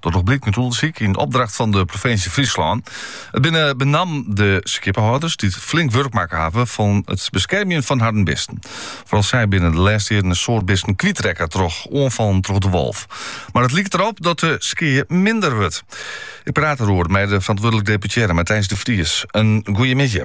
Dat noch blykt út ûndersyk yn opdracht fan de provinsje Fryslân. It binne benammen de skippehâlders dy't flink wurk makke hawwe fan it beskermjen fan harren bisten. Foaral sy binne de lêste jierren in soad bisten kwytrekke troch oanfallen troch de wolf. Mar it liket derop dat de skea minder wurdt. Ik praat deroer mei de ferantwurdlik deputearre Matthijs de Vries. In goeiemiddei.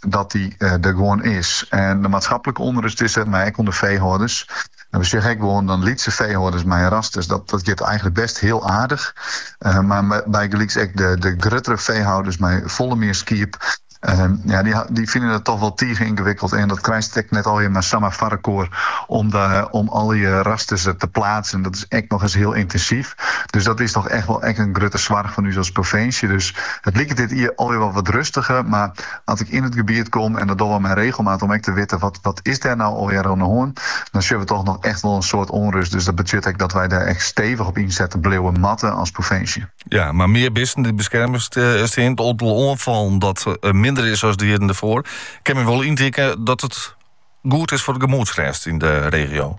dat dy der gewoan is. En de maatskiplike ûnrust is der, mar ek ûnder feehâlders. En we sjogge ek gewoan dan lytse feehâlders mei rasters. Dat, dat giet eigenlik best hiel aardich. Uh, mar bygelyks ek de, de gruttere feehâlders mei folle mear skiep. Uh, ja, dy, dy fine dat toch wol tige yngewikkeld. En dat krijst ek net allemaal samar foarelkoar om, de, om alle rasters te pleatsen. Dat is echt noch ris hiel yntinsyf. Dus dat is toch echt wol echt in grutte soarch fan ús as provinsje. Dus it liket dit jier alwer wol wat rustiger. Mar As ik yn it gebiet kom, en dat dogge we mei regelmaat om ek te witten wat wat is dêr no allegear oan 'e hân, dan sjogge we toch noch echt wol in soad ûnrust. Dus dat betsjut ek dat wy dêr ek stevich op ynsette bliuwe moatte as provinsje. Ja, mar mear bisten dy't beskerme stean, it oantal oanfallen dat minder is as de jierren derfoar, kin my wol yntinke dat it goed is foar de gemoedsrêst yn de regio.